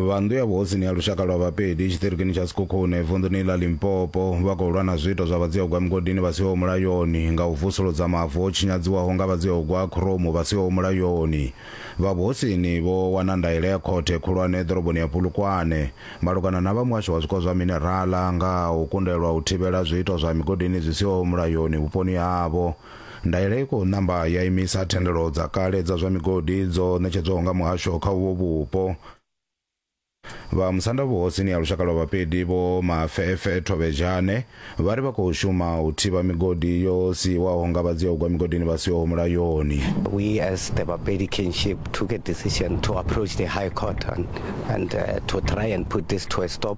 vhandu ya vhuhosini ya lushaka lwa vhapedi tshiṱirikini tsha sikhukhune vunḓuni ḽa limpopo vha khou lwa na zwiito zwa vhadzihogwa migodini vha siho mulayoni nga u vusuludza mavu o tshinyadziwaho nga vhadzihogwa khromu vha siho mulayoni vha vhuhosini vho wana ndaela ya khothe khulwane ḓoroboni ya pulukwane malugana na vha muhasho wa zwiko zwa minerala nga u kundelwa u thivhela zwiito zwa migodini zwi siho mulayoni vhuponi havho Ndaela i khou ṋamba ya imisa thendelo dza kale dza zwa migodi dzo ṋetshedzwaho nga muhasho kha uvho vhupo. Vha musanda vhuhosini ha lushaka lwa Vhapedi Vho Mafefe Thovhejane vha ri vha khou shuma u thivha migodi yo siiwaho nga vha dzia u gwa migodini vha siho mulayoni. We as the Bapedi kinship took a decision to approach the High Court and, and uh, to try and put this to a stop.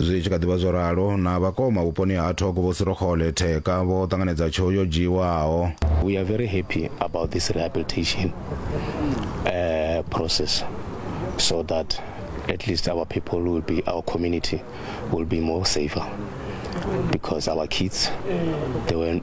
zwi tshi kha ḓivha zwo ralo na vhakoma vhuponi ha thoko vho sirokhole theka vho ṱanganedza tsheo yo dzhiiwaho we are very happy about this rehabilitation uh, process so that at least our people will be our community will be more safer because our kids they were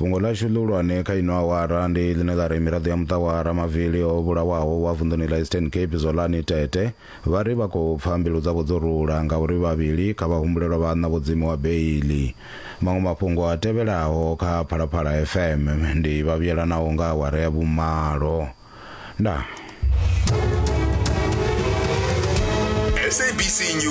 Fhungo ḽashu ḽihulwane kha ino awara ndi ḽine ḽa ri miraḓo ya muṱa wa Ramavili o vhulawaho wa vunḓuni ḽa Eastern Cape Zwolani Tete vha ri vha khou pfa mbilu dzavho dzo rula ngauri vhavhili kha vhahumbulelwa vha ṋa vho dzimiwa beiḽi. Maṅwe mafhungo a tevhelaho kha Phalaphala FM ndi vhavhuyelanaho nga awara ya vhumalo. Ndaa. SABC News.